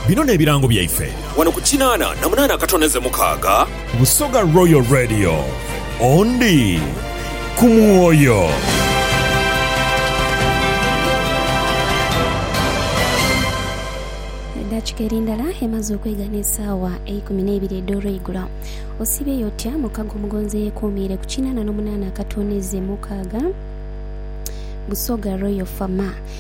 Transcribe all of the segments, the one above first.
Bino n'ebirango byaife. Wano ku kinaana na munaana akatono eze mukaaga. Busoga Royal Radio. Ondi ku mwoyo. Eddaakika eri ndala emaze okwegha n'esaawa eikumi n'eibiri edh'olweigulo. Osiibyeyo otya mukago omugonzi eyeekuumiire ku kinaana n'omunaana akatono eze mukaaga? Busoga Royal FM.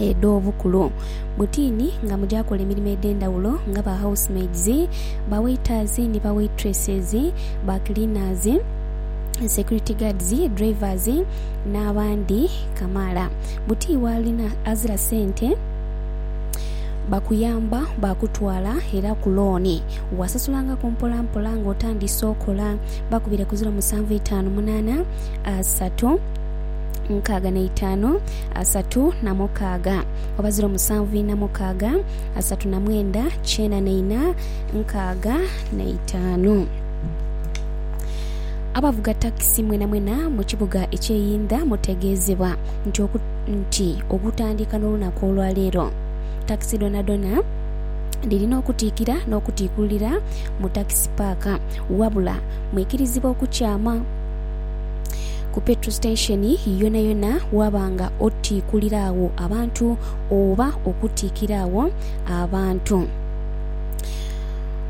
edh'obukulu butiini nga muja kola emirimo edh'endhaghulo nga ba house maids, ba waiters ni ba waitresses, ba cleaners, security guards, drivers n'abandi kamaala. Buti waalina azira sente bakuyamba baakutwala era ku looni waasasulangaku mpolampola ng'otandise okola. Bakubire ku ziro musanvu itaanu munaana asatu nkaaga na itaanu. asatu na mukaaga, oba ziro musanvu ina mukaaga, asatu na mwenda, kyena na ina, nkaaga na itaanu. Abavuga takisi mwenamwena mu kibuga eky'eyindha mutegeezebwa nti oku, nti okutandika n'olunaku olwa leero takisi dhonadhona dhirina okutiikira n'okutiikululira mu takisi paaka, wabula mwikirizibwa okukyama. ku petro station yonayona waba nga otiikulira agho abantu oba okutiikira agho abantu.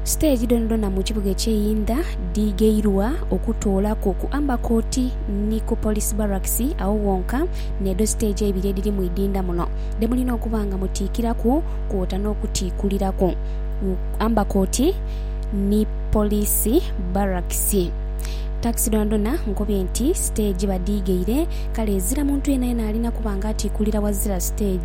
Siteegi dhonadhona mu kibuga ekye Inda dhigheirwa okutoolaku ku Amber Court ni ku Police Barracks agho ghonka n'edho siteegi eibiri edhiri mu idinda muno dhe mulina okuba nga mutiikiraku kwota n'okutiikuliraku Amber Court ni Police Barracks. Takisi dhoonadhoona nkubye nti siteegi badhiigheire, kale ezira muntu yeenayeena alina kuba nga atiikulira ghazira siteegi.